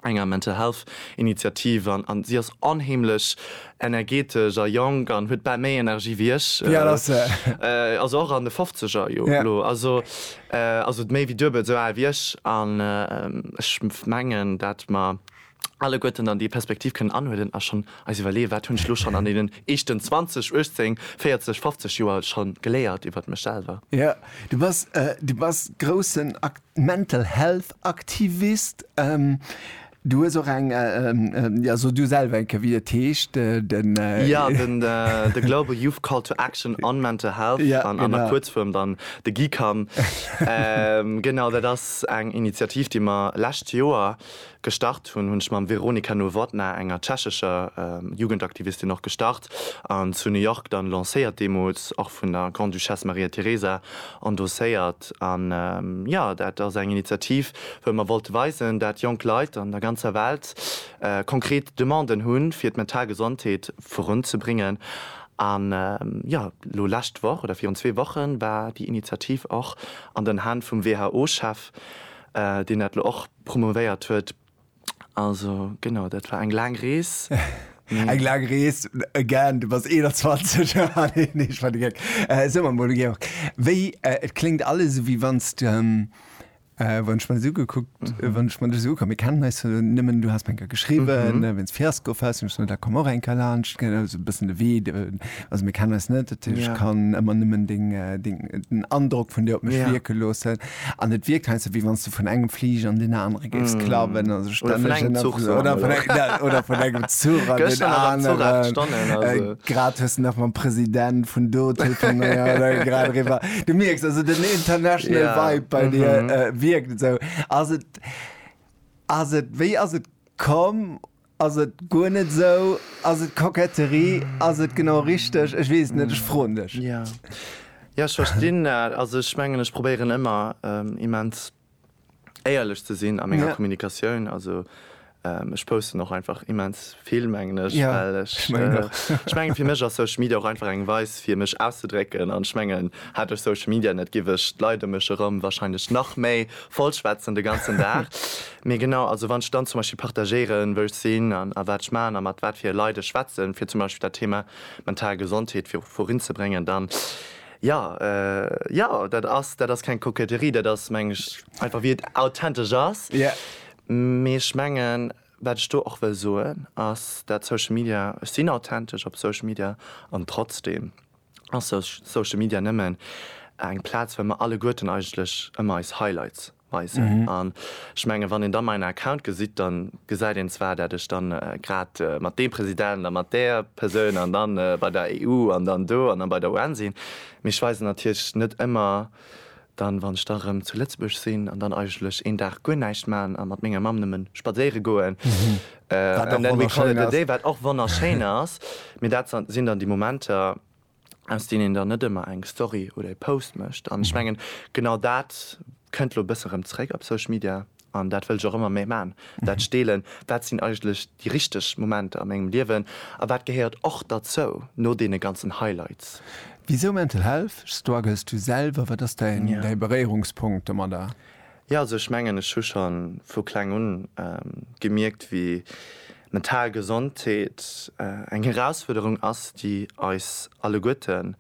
enger Mental Health Initiativ an an si ass onheemlech energetesch a jonk an huet bal méi Energie wéi ech. Wéi al ass se? Also och an de Fofzeger jo elo. Also also méi wéi duebelt esou al wéi ech an ech mengen dat mer alleguerten dann déi Perspektiv kënnen anhuelen a schonn eis iwwerleeë wat hunn ech elo schonn an deenen éischten 20, 18, 40, 50 Joer schonn geléiert iwwert mech selwer. Jo, du bass du bass groussen Ak Mental Health Aktivist. Du hues och eng, jo, so du selwer eng Kéier, wéi et heescht, den. Jo, den The Global Youth Call to Action on Mental Health, an der Kuerzfuerm dann de GYCAM. Genau, dat ass eng Initiativ, déi mer lescht Joer gestart hunn, hunn ech mam Veronika Nowotná, enger tschechescher Jugendaktivistin, och gestart an zu New York dann lancéiert, deemools och vun der Grande-Duchesse Maria Teresa endosséiert. Stad. An jo, dat ass eng Initiativ, wou mer wollte weisen, dat jonk Leit an der ganzer Welt konkret Demanden hunn, fir d'mental Gesondheet virunzebréngen. An jo, elo lescht Woch oder virun zwee Woche war déi Initiativ och an den Hänn vum WHO-Chef, deen dat elo och promouvéiert huet. Also genau, dat war eng laang Rees. Eng laang Rees, again, du bass 21. Nee, nee, ech war de Geck. Äh, soe mer mol, Georg, wéi, äh, et kléngt alles esou, wéi wann s de, äh, wann ech mer dech esou ugekuckt, wann ech mer dech esou ugekuckt, mir kennen eis jo nëmmen, du has mer eng Kéier geschriwwen, wéi s Fiasko fest, hunn ech gesot, da komm och eng Kéier laanscht, gell, also e bëssen de Wee, also mir kennen eis net, dat heescht, ech kann ëmmer nëmmen deng, deng, den Androck vun dir op mech wierke loossen. An et wierkt heiansdo, wéi wann s du vun engem Fliger an deen anere géifs klawen. Also Oder vun engem Zuch, so oder vun engem, ja, oder vun engem Zuch an deen aneren. Grad hues de nach mam President vun do telefonéiert, grad eriwwer. Du mierks also den international Vibe bei dir wierkt esou. Ass et, ass et, wéi ass et komm? Ass et guer net esou? Ass et Koketterie? Ass et genau richteg? Ech weess et net, ech froen dech. Jo, jo, ech verstinn dat. Also ech mengen, ech probéieren ëmmer immens éierlech ze sinn a menger Kommunikatioun. Also ech posten och einfach immens vill, mengen ech, well ech, ech mengen, fir mech ass Social Media och einfach eng Weis fir mech auszedrécken. An ech mengen, hätt ech Social Media net, giff ech d'Leit ëm mech erëm wahrscheinlech nach méi vollschwätzen de ganzen Dag. Mee genau, also wann ech dann zum Beispill partagéieren, wou ech sinn an a wat ech man a mat wat fir Leit ech schwätzen, fir zum Beispill dat Thema mental Gesondheet vir vorinzebréngen, dann jo, jo, dat ass, dat ass keng Koketterie, dat ass, mengen ech, einfach wéi et authentesch ass. Mee ech mengen, wat ech do och wëll soen, ass, dat Social Media, ech sinn authentesch op Social Media an trotzdem, ass Social Media nëmmen eng Plaz wou mer alleguerten eigentlech ëmmer eis Highlights weisen an ech menge wann een da main Account gesitt, da gesäit een zwar dat ech dann grad mat deem President a mat där Persoun an dann bei der EU an dann do an dann bei der UN sinn, mee ech weisen natierlech net ëmmer. dann wann ech da rem zu Lëtzebuerg sinn an dann eigentlech een Dag guer näischt maan a mat menger Mamm nëmmen spadséiere goen, and then we call it a day, wat och wonnerschéin ass, mee dat sinn dann déi Momenter aus deenen een dann net ëmmer eng Story oder ee Post mécht an ech mengen genau dat kënnt lo e bësse rem zréck op Social Media. an dat wëll ech och ëmmer méi maan, dat Steelen, wat sinn eigentlech déi richteg Momenter a mengem Liewen a wat gehéiert och derzou no deene ganzen Highlights? Wisou Mental Health? Struggles du selwer? Wat ass däin Beréierungspunkt domadder? Jo, also ech mengen, ech hu scho vu kleng un gemierkt, wéi mental Gesondheet eng Erausfuerderung ass, déi eis alleguerten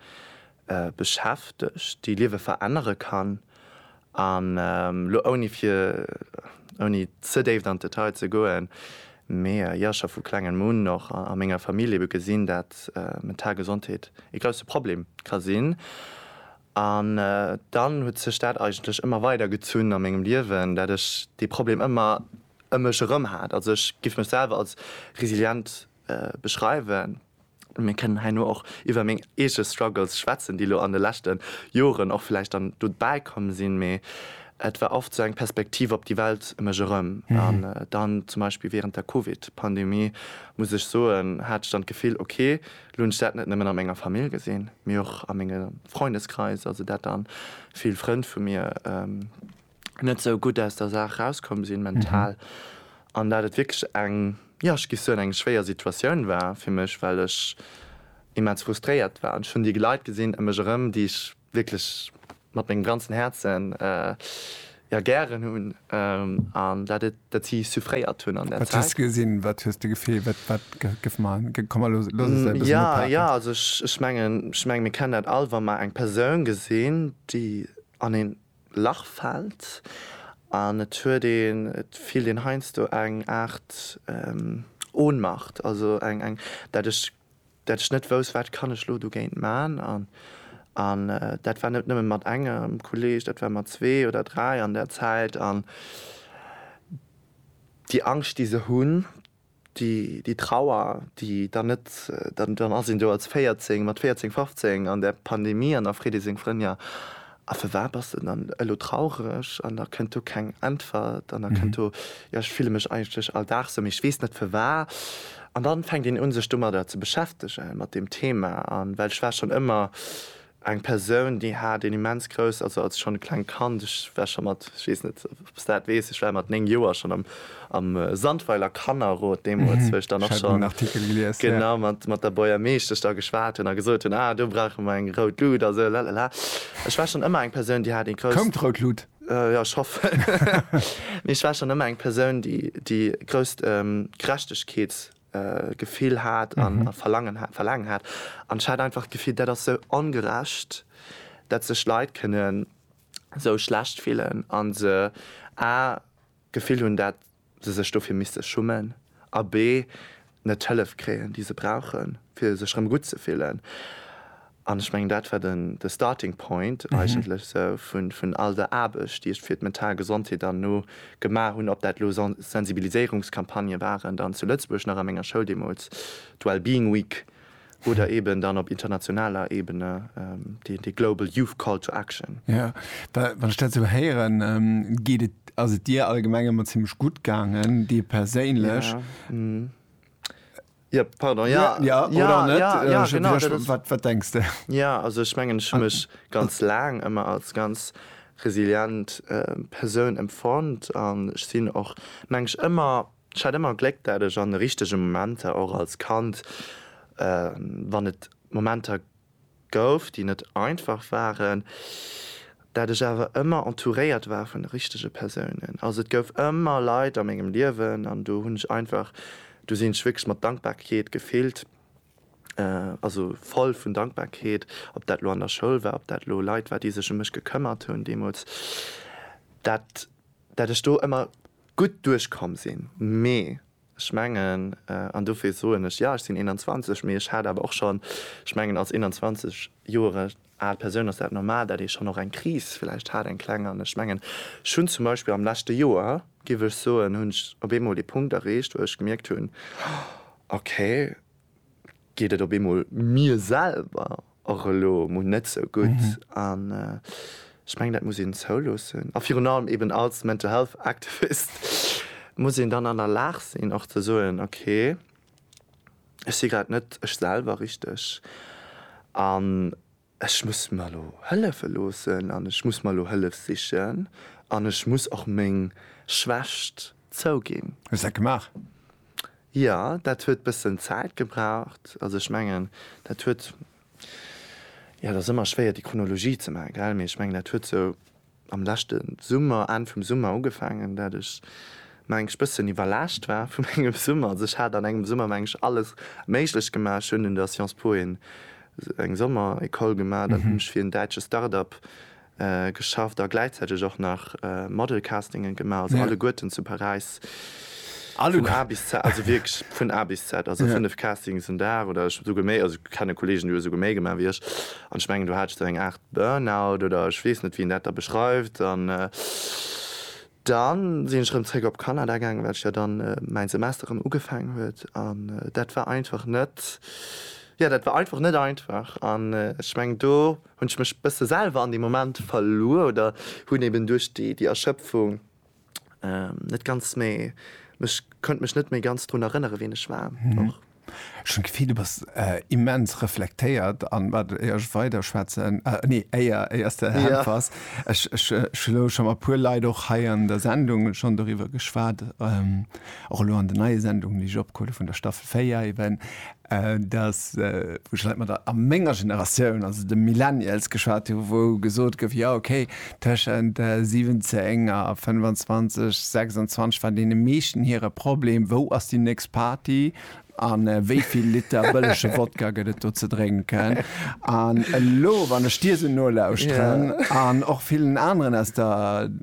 beschäftegt, déi Liewe verännere kann. An elo ouni fir, ouni ze déift an d'Detail ze goen, mee jo scho vu klengem un och a menger Famill ebe gesinn, dat mental Gesondheet ee grousse Problem ka sinn. An dann huet sech dat eigentlech ëmmer weider gezunn a mengem Liewen, dat ech dee Problem ëmmer ëm mech erëm hat. Also ech géif mech selwer als resilient beschreiwen. Mir kënnen heino och iwwer meng eege Struggles schwätzen, déi elo an de leschte Joren och vläicht dann do bäi komm sinn, mee et war oft esou eng Perspektiv op déi Welt e mech erëm. An dann zum Beispill wärend der Covid-Pandemie, muss ech soen, hat ech dann d'Gefill, ok, elo hunn ech dat net nëmmen a menger Famill gesinn, mee och a menge Freundeskreis, also dat dann vill Frënn vu mir, net sou gutt aus der Saach rauskomm sinn, mental, an dat et wierklech eng, jo, ech géif soen, eng schwéier Situatioun war fir mech, well ech immens frustréiert war. An ech hunn déi Leit gesinn ëm mech erëm, déi ech wierklech mat mengem ganzen Häerzen, jo, gären hunn, an dat et, dat si suffréiert hunn an där Zäit. Wat hues de gesinn? Wat hues de gefillt? Wat, wat géif mer, komm mer loosse se e bëssen ophaken. Jo, jo, also ech, ech mengen, ech mengen, mir kennen dat all, wa mer eng Persoun gesinn, déi an een. Lach fällt an et huet een, et fillt een heiansdo eng Aart Ohnmacht, also eng, eng, dat ech, dat ech net wouss, wat kann ech lo dogéint man. An, an dat war net nëmme mat engem Kolleg, dat war mat zwee oder dräi an där Zäit. An déi Angscht, déi se hunn. Déi Trauer, déi dann net, dann ass een do als 14, mat 14, 15 an der Pandemie an da freet ee seng Frënn, jo a fir wat bass de dann elo traureg? An da kënnt do keng Äntwert an da kënnt do, jo ech fille mech eigentlech all Dag sou, mee ech weess net fir wa. An da fänkt een un sech domadder ze beschäftegen, mat deem Thema, well ech war schonn ëmmer Eng Persoun déi hat een immens grouss, also als schonn e klengt Kand, ech war scho mat, ech weess net ob s dat weess, ech war mat 9 Joer schonn am am Sandweiler Kannerrot deemools, wou ech dann och schonn genau mat mat der Bourgermeeschtesch da geschwat hunn a gesot hunn, ah do brauche mer eng rout Lut a sou lalala. Ech war schonn ëmmer eng Persoun déi hat ee grouss. Koum d'rout Lut? Jo, ech hoffen. Mee ech war schonn ëmmer eng Persoun déi déi grousst Gerechtegkeets. Gefill hat an Verlangen hat, Verlaangen hat. An ech hat einfach d'Gefill, dat ass sou ongerecht, dat sech Leit kënnen sou schlecht fillen a se a d'Gefill hunn, dat se sech dofir misste schummen a b net d'Hëllef kréien, déi se brauchen, fir sech rëm gutt ze fillen. An ech mengen, dat war den, de starting point eigentlech esou vun, vun all der Aarbecht, déi ech fir d'mental Gesondheet dann elo gemaach hunn, ob dat elo Sen, Sensibiliséierungscampagnë waren dann zu Lëtzebuerg nach a menger Schoul deemools, d'Wellbeing Week, oder eeben dann op internationaler Ebene déi, déi Global Youth Call to Action. Jo, da, wann ech dat esou héieren, geet et, ass et dir allgemeng ëmmer zimmlech gutt gaangen, dir perséinlech. Jo, hm. Jo, pardon, jo, jo, jo, jo, genau, dat ass. Wat, wat denks de? Jo, also ech mengen, ech hu mech ganz laang ëmmer als ganz resilient Persoun empfonnt an ech sinn och, meng ech, ëmmer, ech hat ëmmer Gléck, dat ech an de richtege Momenter, och als Kand, wann et Momenter gouf, déi net einfach waren, dat ech awer ëmmer entouréiert war vun de richtege Persounen. Also et gouf ëmmer Leit a mengem Liewen an do hunn ech einfach, do sinn ech wierklech mat Dankbarkeet gefillt, also voll vun Dankbarkeet, ob dat elo an der Schoul war, ob dat elo Leit war, déi sech ëm mech gekëmmert hunn deemools, dat dat ech do ëmmer gutt duerchkomm sinn. Mee Ech mengen, an dofir soen ech, jo ech sinn 21, mee ech hat awer och schonn, ech mengen als 21 Jore al Persoun ass dat normal, datt ee schonn och eng Kris vläicht hat, eng kleng. An ech mengen, ech hunn zum Beispill am leschte Joer, giff ech soen, hunn ech op eemol dee Punkt erreecht, wou ech gemierkt hunn, okay, geet et op eemol mir selwer och elo mol net sou gutt an ech mengen dat muss een zouloossen a virun allem eben als Mental Health Activist muss een dann an der Lag sinn och ze soen ok ech si grad net ech selwer richteg an Ech muss mer elo hëllefe loossen an ech muss mer elo Hëllef sichen an ech muss och meng Schwächt zouginn. Hues dat gemaach? Jo, dat huet bëssen Zäit gebraucht. Also ech mengen, dat huet, jo, et ass ëmmer schwéier déi Chronologie ze maachen, gell, mee ech mengen, dat huet sou am leschte Summer, Enn vum Summer ugefaangen, dat ech mengs bëssen iwwerlaascht war vu mengem Summer. Also ech hat an engem Summer mengs alles méiglech gemaach. Ech hunn un der Sciences Po een eng Sommer-Ecole gemaach, dann hunn ech fir en däitsche Start-Up geschafft a gläichzäiteg och nach Model-Castingen gemaach, also alleguerten zu Paräis vun A bis Z, also wierklech vun A bis Z, also 5 Castings en Dag oder esouguer méi, also ech kenne Kollegen déi hu esouguer méi gemaach wéi ech an ech mengen do hat ech dann eng Aart Burnout oder ech weess net wéi een dat da beschreift an dann sinn ech erëm zréck op Kanada gaangen, well ech jo dann mäin Semester erëm ugefaangen huet an dat war einfach net, jo dat war einfach net einfach an ech mengen do hunn ech mech bësse selwer an deem Moment verluer oder hunn eben duerch déi Erschëpfung, net ganz méi mech konnt mech net méi ganz drun erënnere ween ech war och. Ech hunn d'Gefill, du bass immens reflektéiert an wat, éier ech weider schwätzen, nee éier, éier s de äntwers, ech ech hu elo scho mat e puer Leit och hei an der Sendung schonn doriwwer geschwat, och elo an den neie Sendungen, déi ech opgeholl hu vun der Staffel 4 eben, dass, wou ech leit mat der a menger Generatioun, also de Millennials, geschwat hu wou gesot gouf, jo okay, tëschent 17 a 25, 26 war deene meeschten hire Problem, wou ass déi nächst Party a wéi vill Liter bëllege Wodka gëtt et do ze drénken. An elo, wann ech dir esou nolauschteren an och villen aneren aus der.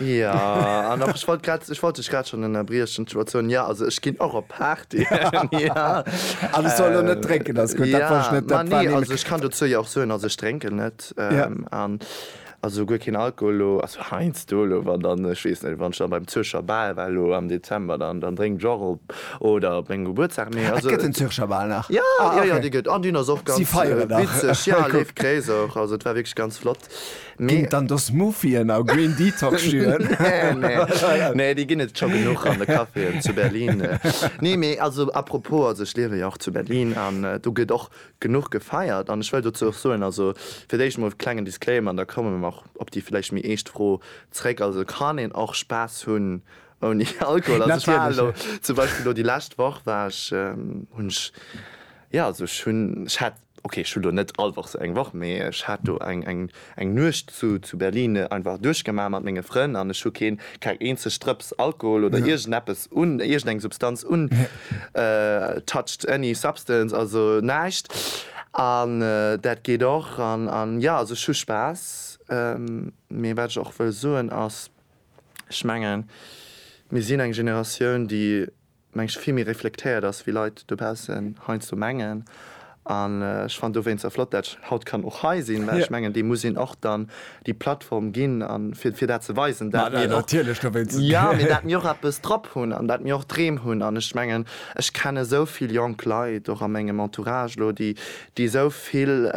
Ja, an och, ech wollt grad, ech wollt dech grad schonn ënnerbriechen, d'Situatioun, ja, also ech ginn och op Partyen, ja. An ech soll elo net drénken, ass gutt, dat wollt ech net, dat war nemen. Ja, ma nee, also ech kann dozou jo och soen, also ech drénken net, an also guer keen Alkohol elo, also heiansdo elo, wann dann, ech weess net, wann ech dann beim Zürcher Bal war elo am Dezember, dann drénken ech och op, oder op mengem Gebuertsdag, mee also. Et gëtt den Zürcher Bal nach? Ja, ja, ja, dee gëtt, an deen ass och ganz witzeg, ja, leeft Gréiss och, also et war wierklech ganz flott. Ginn et dann do Smoothien a Green Detox Juen? Nee, déi ginn et scho genuch an de Caféen zu Berlin. Nee, mee also apropos, also ech liewen jo och zu Berlin an do gëtt och genuch gefeiert an ech wëll dozou och soen, also fir d'éischt emol klengen Disclaimer an da komme mer och op déi vläicht méi eescht Fro zréck, also et kann een och Spaass hunn ouni Alkohol. Also ech war elo zum Beispill elo déi lescht Woch war ech, hunn ech, jo also ech hunn, ech hat, Ok, ech hu lo net all Woch sou eng Woch, mee ech hat do eng Nuecht zu Berlin einfach duerchgemaach mat menge Frënn an ech hu keen keng eenzeg Drëps Alkohol oder iergendeppes un, iergendeng Substanz un, touched any substance, also näischt an dat geet och an jo, also ech hu Spaass. Mee wat ech och wëll soen ass, ech mengen mir sinn eng Generatioun déi, mengs, vill méi reflektéiert ass, wéi Leit dobaussen heiansdo mengen. An ech fannen dowéinster flott, dat ech haut kann och hei sinn, well ech mengen, deem muss een och dann déi Plattform ginn, fir, fir dat ze weisen, dat mir och, jo, mee dat mir och eppes drop hunn an dat mir och Dreem hunn. An ech mengen, ech kenne sou vill jonk Leit och a mengem Entourage elo, déi, déi sou vill,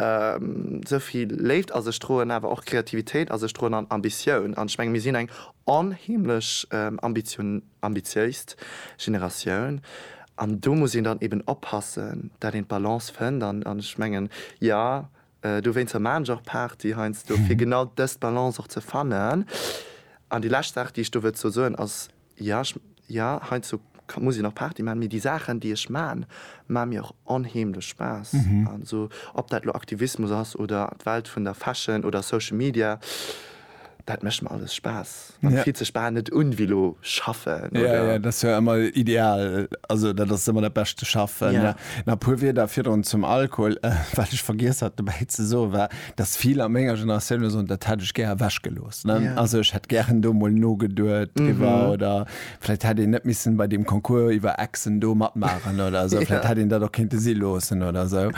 sou vill Léift a sech droen, awer och Kreativitéit a sech droen an Ambitioun. An ech mengen, mir sinn eng onheemlech ambitioniert. ambitiéist Generatioun an do muss een dann eben oppassen, dat een d'Balance fënnt an ech mengen, jo, dowéinster maachen ech och Party heiansdo, fir genau dës Balance och ze fannen. An déi lescht Saach, déi ech do wëllt dozou soen, ass, jo, ech, jo, heiansdo muss een och Party maachen, mee déi Saachen, déi ech maachen, maache mir och onheemlech Spaass. Also ob dat elo Aktivismus ass oder d'Welt vun der Fashion oder Social Media, Dat mécht mer alles Spaass. Et fillt sech bal net un wéi elo schaffen, oder? Jo, jo, dat ass jo ëmmer ideal. Also dat ass ëmmer dat beschte Schaffen. Jo. Nach e puer Wierder virdrun zum Alkohol, wat ech vergiess hat dobäi ze soen, war, dass vill a menger Generatioun elo soen, dat hätt ech gär ewechgelooss, ne? Jo. Also ech hätt gären do emol nogeduet driwwer, oder Vläit hätt een net missen bei deem Concours iwwer Exen do matmaachen oder esou. Vläit hätt een dat och kéinte si loossen oder esou.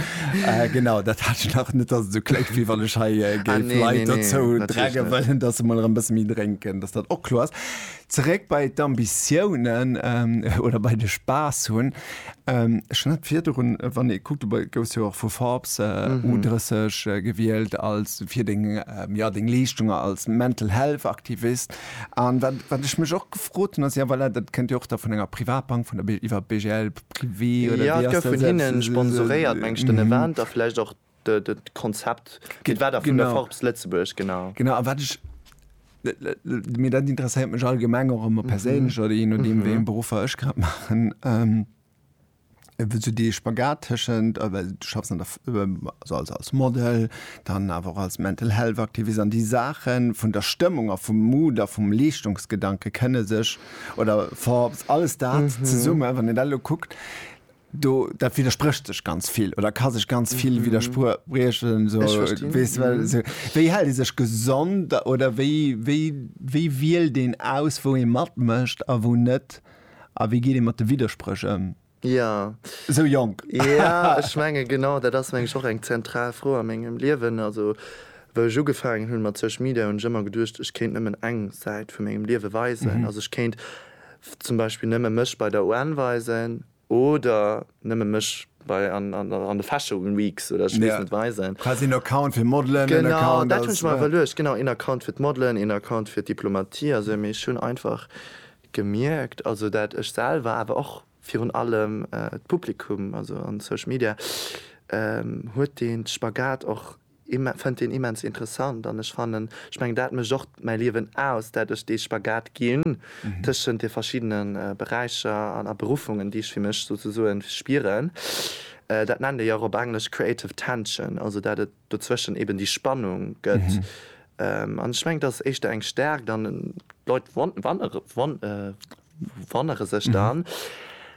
Genau, dat hat ech nach net, dass et esou kléngt, wéi wann ech hei géif Leit dozou drängen wëllen, dass se mol erëm e bësse méi drénken, dass dat och kloer ass. Zeréck bei d'Ambitiounen oder bei de Spaass hunn. Ech hunn hatt virdrun, wann ee kuckt, du gouss jo och vu Forbes U 30 gewielt als fir deng, jo, deng Leeschtunge als Mental Health Aktivist. An wat, wat ech mech och gefrot hunn, ass, jo, voilà, dat kënnt jo och da vun enger Privatbank, vun der Bi, iwwer BGL privé oder wéi ass dat selbst? Jo, et gouf vun hinne sponsoréiert, meng ech, den Event a vläicht och de, de, d'Konzept. Et war da vun der Forbes Lëtzebuerg, genau. Genau, a wat ech, mee dat interesséiert mech allgemeng och ëmmer perséinlech oder jee nodeem, wéi eng Beruffer ech grad maachen. sou dee Spagat tëschent, well du schaffs an der, also als, als Model, dann awer och als Mental Health Aktivist an déi Saache vun der Stëmmung a vum Mood a vum Leeschtungsgedanke kënne sech oder ver, alles dat zesumme, wann een dat elo kuckt, do, dat widdersprécht sech ganz vill oder ka sech ganz vill widderspriechen esou. Ech verstinn. Weess de, well esou, wéi hält ee sech gesond oder wéi, wéi, wéi wielt een aus, wou ee matmécht a wou net? A wéi geet ee mat de Widderspréch ëm? Jo. Esou jonk. Jo, ech menge genau dat ass meng ech och eng zentral Fro a mengem Liewen. Also wou ech ugefaangen hunn mat Social Media hunn ech ëmmer geduecht, ech kéint nëmmen eng Säit vu mengem Liewe weisen. Also ech kéint zum Beispill nëmme mech bei der UN weisen oder nëmme mech bei an de Fashion Weeks oder ech weess net weisen. Quasi en Account fir Modelen, en Account als. Genau, dat hunn ech mer iwwerluecht. Genau, een Account fir d'Modelen, een Account fir d'Diplomatie. Also mee ech hunn einfach Gemierkt, also dat ech selwer, awer och virun allem d'Publikum, also an Social Media huet deen Spagat och, fënnt deen immens interessant. An ech fannen, ech mengen dat mécht och mäi Liewen aus, dat ech dee Spagat ginn tëschent de verschiddene Beräicher a Beruffungen, déi ech fir mech souzesoen spieren. Dat nennt ee jo och op Englesch creative tension, also dat et dozwëschen eben déi Spannung gëtt an ech mengen dat ass éischter eng Stärkt an d'Leit wonnere sech dann,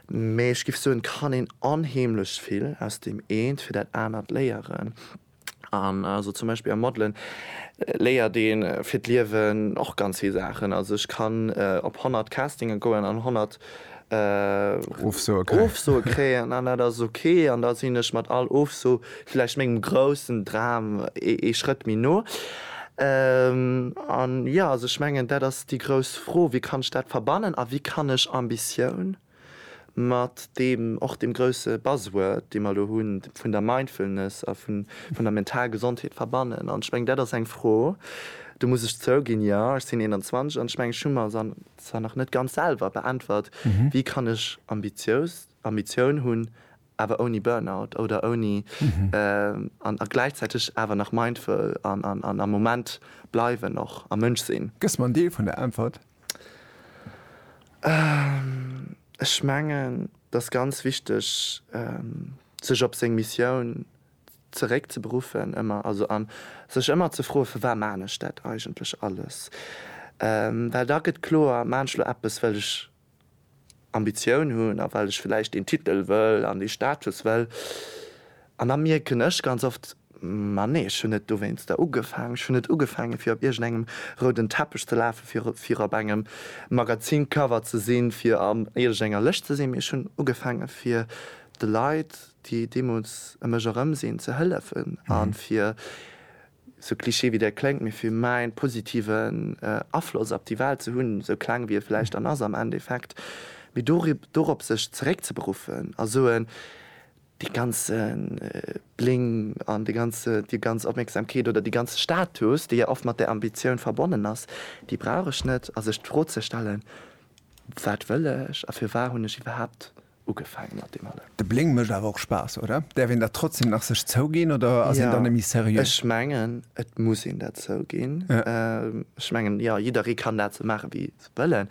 mee ech géif soen et kann een onheemlech vill aus deem eent fir dat anert léieren an also zum Beispill am Modelen léiert ee fir d'Liewen och ganz vill Saachen. Also ech kann op 100 Castinge goen an 100 Ofsoe kréien an dat ass ok an da sinn ech mat all Ofso vläicht mengem groussen Dram ee Schrëtt méi no. An jo, also ech mengen dat ass déi grouss Fro, wéi kann ech dat verbannen a wéi kann ech Ambitioun mat deem och deem grousse Buzzword, dee mer elo hunn, vun der Mindfulness a vun der mental Gesondheet verbannen. An ech mengen dat ass eng Fro, do muss ech zouginn, jo, ech sinn 21 an ech mengen ech hu mer se an Zwar nach net ganz selwer beäntwert, wéi kann ech ambitious, Ambitioun hunn, awer ouni Burnout oder ouni, an a gläichzäiteg awer nach mindful an an am Moment bleiwen och a Mënsch sinn? Gëss mer en Deel vun der Äntwert? Ech mengen, et ass ganz wichteg, sech op seng Missioun, zeréck ze beruffen ëmmer, also an sech ëmmer ze froe firwat maachen ech dat eigentlech alles, well da gëtt kloer, maachen ech elo eppes well ech Ambitioun hunn a well ech vläicht deen Titel wëll an dee Status wëll an da mierken ech ganz oft, ma nee, ech hunn net dowéinster ugefaangen, ech hunn net ugefaange fir op iergendengem rouden Teppech ze lafe fir fir op engem Magazincover ze sinn, fir an iergendenger Lëscht ze sinn, mee ech hunn ugefaange fir de Leit, déi deemols e mech erëm sinn ze hëllefen a fir, sou cliché wéi dat kléngt, mee fir mäin positiven Afloss op déi Welt ze hunn, sou kleng wéi e vläicht dann ass am Endeffekt, mee dorop sech zeréckzeberuffen a soen, dee ganze Bling an dee ganze, déi ganz Opmierksamkeet oder déi ganze Status, dee jo oft mat där Ambitioun verbonnen ass, déi brauch ech net a sech d'Fro ze stellen, wat wëll ech a firwat hunn ech iwwerhaapt ugefaangen mat deem allem. De Bléng mécht awer och Spaass, oder? Däerf een dat trotzdem nach sech zouginn oder ass een dann méi seriö? Ech mengen, et muss een dat zouginn. Ech mengen, jo, jidderee kann dat sou maachen, wéi se wëllen.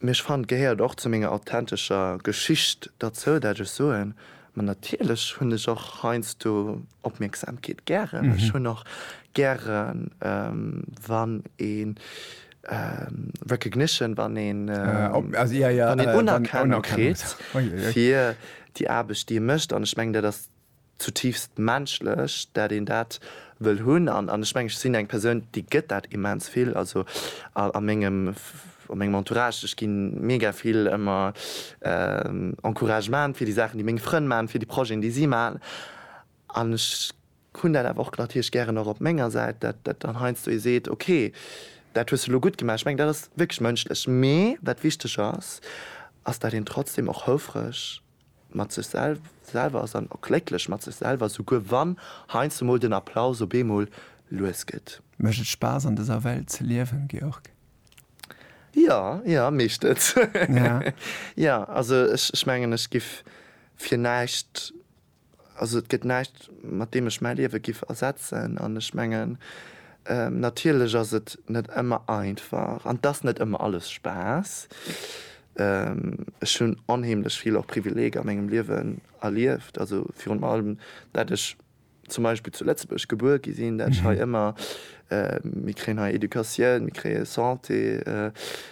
Mee ech fannen, et gehéiert och zu menger authentescher Geschicht derzou, dat ech soen, ma natierlech hunn ech och heiansdo Opmierksamkeet gären. Ech hunn och gären, wann ee Recognition, wann een Unerkennung kritt fir déi Aarbecht, déi ee mécht. An ech mengen, dat ass zutiifst menschlech, dat een dat wëll hunn. An ech mengen, ech sinn eng Persoun, déi gëtt dat immens vill. Also a mengem Entourage, ech gi mega vill ëmmer Encouragement fir déi Saachen, déi meng Frënn maachen, fir déi Projeten, déi si maachen. An ech hunn dat awer och natierlech gären och op menger Säit, dat dat dann heiansdo ee seet, ok, dat hues de elo gutt gemaach. Ech mengen, dat ass wierklech mënschlech. Mee wat wichteg ass, ass, dat een trotzdeem och houfreg mat sech selwer ass an och glécklech mat sech selwer, souguer wann heiansdo mol den Applaus op eemol lues gëtt. Mécht et Spaass an dëser Welt ze liewen, Georg? Jo, jo, mécht et. Jo, also ech mengen, ech giff fir näischt Also et gëtt näischt, mat deem ech mäi Liewe giff ersetzen. An ech mengen, natierlech ass et net ëmmer einfach an et ass net ëmmer alles Spaass. Ech hunn onheemlech vill och Privileeger a mengem Liewen erlieft, also virun allem, dat ech zum Beispill zu Lëtzebuerg gebuer gi sinn, dat ech hei ëmmer, mir kréien hei Educatioun, mir kréie Santé,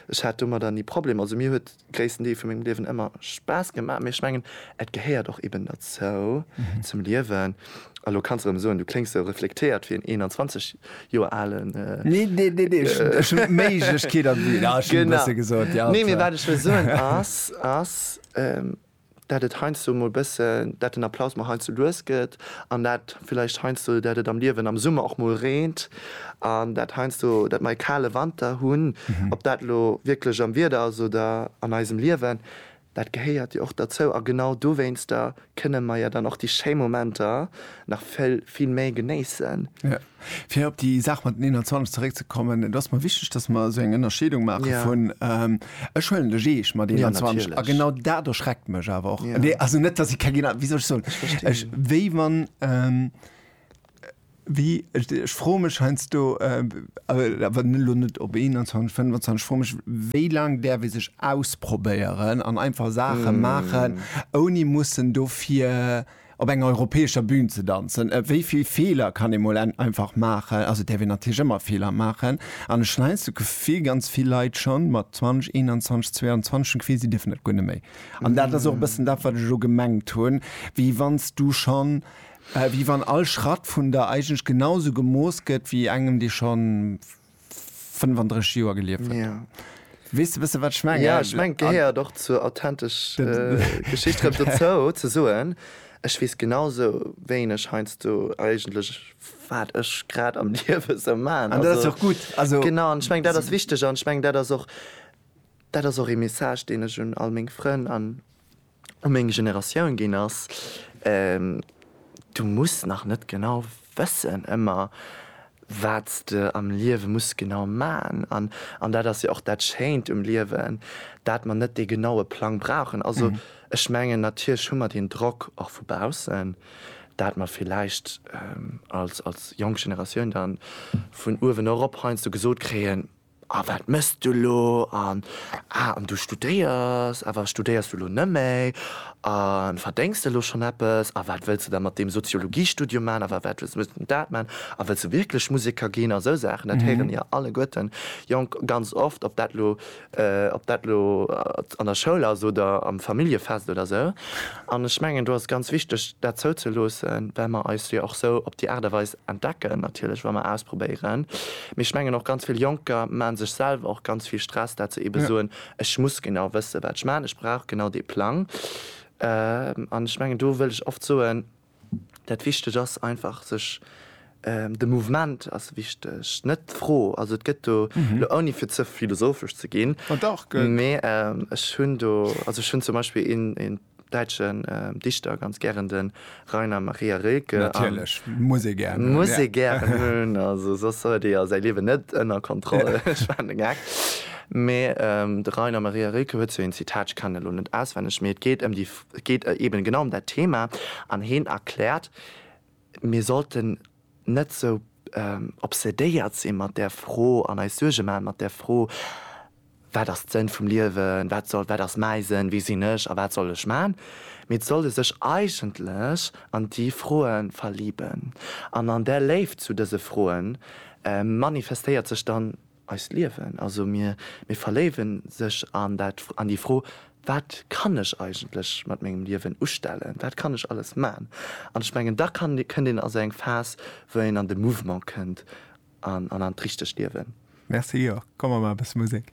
ech hat domadder ni Problemer. Also mir huet gréissten Deel vu mengem Liewen ëmmer Spaass gemaach, mee ech mengen, et gehéiert och eben derzou, zum Liewen. A lo kanns de erëm soen, du kléngs sou reflektéiert wéi en 21 Joer alen. Nee, nee, nee, nee, ech hunn d'Méiglechkeet an. Genau. Wat ech wëll soen ass, ass. dat et heiansdo mol bëssen, dat den Applaus mol heiansdo lues gëtt an dat villäicht heiansdo, dat et am Liewen am Summer och mol reent an dat heiansdo, dat mer e kale Wanter hunn. Ob dat elo wierklech am Wieder ass oder an eisem Liewen, dat gehéiert jo och derzou a genau dowéinster kënne mer jo dann och déi schéi Momenter nach vill, vill méi genéissen. Fir op déi Saach mat den 21 zeréckzekommen, et ass mer wichteg, dass mer esou eng Ënnerscheedung maache vun, ech huelen de Jeesch mat 21 a genau dat erschreckt mech awer och, nee also net, dass ech keng, wéi soll ech soen, ech wéi wann, wéi, ech froe mech heiansdo, awer elo net op 21, 25, ech froe mech, wéi laang däerf ee sech ausprobéieren an einfach Saache maachen, ouni mussen dofir op enger europäescher Bühn ze danzen, wéi vill Feeler kann ee mol einfach maachen, also et däerf een natierlech ëmmer Feeler maachen, an ech hunn hei eins d'Gefill, ganz vill Leit schonn mat 20, 21, 22 hunn d'Gefill, si dierfen dat guer net méi. An dat ass och e bëssen dat, wat ech elo gemengt hunn, wéi wann s du schonn, wéi wann all Schratt vun der eigentlech genausou gemooss gëtt wéi engem, dee schonn. 35 Joer gelieft huet. Ja. Weess de bëssen, wat ech mengen? Ja, ech mengen, et gehéiert och zur authentescher Geschicht erëm dozou, ze soen, Ech weess genau esou wéineg heiansdo eigentlech, wat ech grad am Liewe esou maachen. An dat ass jo och gutt. Also. Genau, an ech mengen, dat ass wichteg. An ech mengen, dat ass och, dat ass och ee Message, deen ech un all meng Frënn an. u meng Generatioun ginn ass, Du muss nach net genau wëssen ëmmer, wat s de am Liewe muss genau man. An dat ass jo och dat Schéint um Liewen, dat mer net dee genaue Plang brauchen. Also ech mengen, natierlech hu mer deen Drock och vu baussen, dat mer villäicht als jonk Generatioun da vun uewen erop heiansdo gesot kréien, A wat mëss du elo? An, Ah, an du studéiers? Awer studéiers du elo nëmméi? A verdéngs de elo schonn eppes? A wat wëlls de da mat deem Soziologiestudium man? Awer wat wëlls du dat man? A wëlls de wierklech Museker ginn? A esou Saachen. Dat héiere mir alleguerten jonk ganz oft, ob dat elo, ob dat elo an der Schoul ass oder am Familljefest oder esou. An ech mengen do ass ganz wichteg dat zouzeloossen, well mer eis jo och esou op déi Aart a Weis Entdecken natierlech, wa mer ausprobéieren. Mee ech mengen och ganz vill Jonker maache sech selwer och ganz vill Stress, dat se eebe soen, ech muss genau wësse wat ech maachen, ech brauch genau dee Plang. An ech mengen do wëll ech oft soen, dat Wichteg ass einfach sech, de Mouvement ass wichteg, net d'Fro. Also et gëtt do, elo ouni fir ze philosophesch ze ginn, mee ech hunn do, also ech hunn zum Beispill een däitschen Dichter ganz gären de Rainer Maria Rilke. Natierlech, muss ee gären. Muss ee gären hunn, also soss huet ee jo säi Liewen net ënner Kontroll. Ech maachen de Gag. Mee de Rainer Maria Rilke huet sou een Zitat, ech kennen elo net auswenneg, mee et geet ëm déi, et geet eben genau ëm dat Thema an heen erkläert, Mir sollten net sou obsedéiert si mat där Fro an eis Suerge maache mat där Fro, Wat ass d'Sënn vum Liewen? Wat soll, wat ass mäi Sënn? Wie sinn ech a wat soll ech maachen? Mee et soll e sech eigentlech an déi Froe verliben. An an där Léift zu dëse Froe manifestéiert sech dann Eist Liewen, also mir, mir verléiwen sech an dat, an déi Fro, Wat kann ech eigentlech mat mengem Liewen ustellen? Wat kann ech alles man? An ech mengen, da kann, kënnt een a sou eng Phas, wou een an de Mouvement kënnt an an an d'richtegt Liewen. Merci, jo, komm, mer maache bësse Musek.